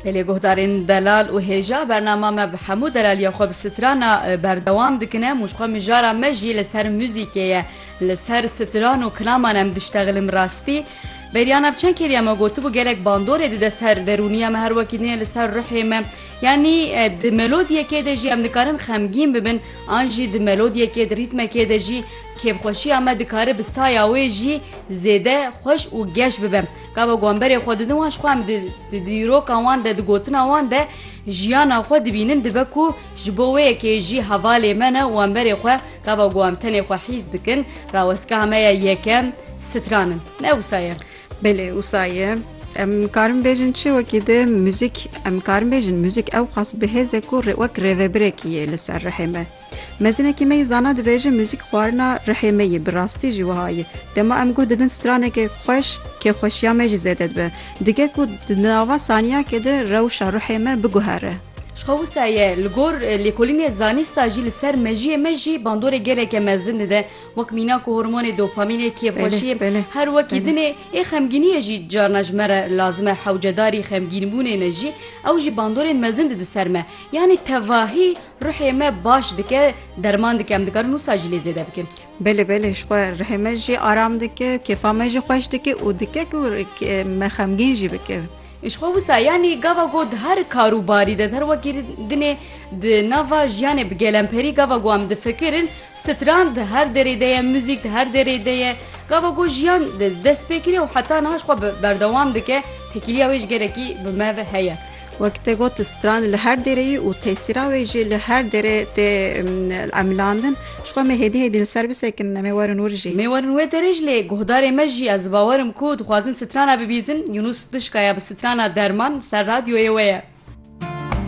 Belê guhdarên delal û hêja bernama me bi hemû delaliya xwe bi strana berdewam dikin em û ji xwe mijara me jî li ser muzîkê ye li ser stran û kilaman em diştexilin bi rastî Beryana bi çend kêrî me gotibû gelek bandorê dide ser derûniya me her wekî nê li ser ruhê me yanî di melodiyekê de jî em dikarin xemgîn bibin an jî di melodiyekê di rîtmekê de jî kêfxweşiya me dikare bi saya wê jî zêde xweş û geş bibe. Gava ku em berê xwe didin wan ji xwe em di dîroka wan de, di gotina wan de jiyana xwe dibînin dibe ku ji bo wê yekê jî hevalê me ne û em berê xwe gava ku em tenê xwe hîs dikin rawestgeha me ya yekem stran in. Ne wisa ye? Belê wisa ye. Em karin bêjin çi wekî di muzîk em karin bêjin muzîk ewqas bihêz e ku wek rêvebirekî yê li ser rihê me. Mezinekî me yê zana dibêje muzîk xwarina rihê me yê, bi rastî jî wiha ye. Dema em guh didin straneke xweş, kêxweşiya me jî zêde dibe. Dige ku di nava saniyakê de rewşa ruhê me biguhere. Ji xwe wisa ye li gor lêkolînê zanîsta jî li ser mejiyê me jî bandorê geleke mezin dide. Wek mîna ku hormonê dopamînê, kêxweşiyê, her wekî din ê, ê xemgîniyê jî carna ji me re lazim e. Hewcedarî xemgînbûnê ne jî ew jî bandorên mezin dide ser me. Yanî tevahî Ruhê me baş dike, derman dike em dikarin wisa jî lê zêde bikin. Belê belê ji xwe rihê me jî aram dike, kêfa me jî xweş dike û dike ku me xemgîn jî bike. Ji xwe wisa yanî gava ku di her kar û barî de di her wekî dinê di nava jiyanê bi gelemperî gava ku em difikirin stran di her derê de ye, muzîk di her derê de ye. Gava ku jiyan dest pê kiriye û heta niha ji xwe berdewam dike, tekîliya wê ji gelekî bi me ve heye. Wek te got stran li her dereyî û tesîra wê jî li her dere tê emilandin. Jixwe me hêdî hêdî li ser bisekin em ê werin wir jî. Em ê werin wê derê jî lê guhdarê me jî ez bawer im ku dixwazin strana bibîzin. Yunus Dişka ya bi strana Derman ser radyoyê we ye.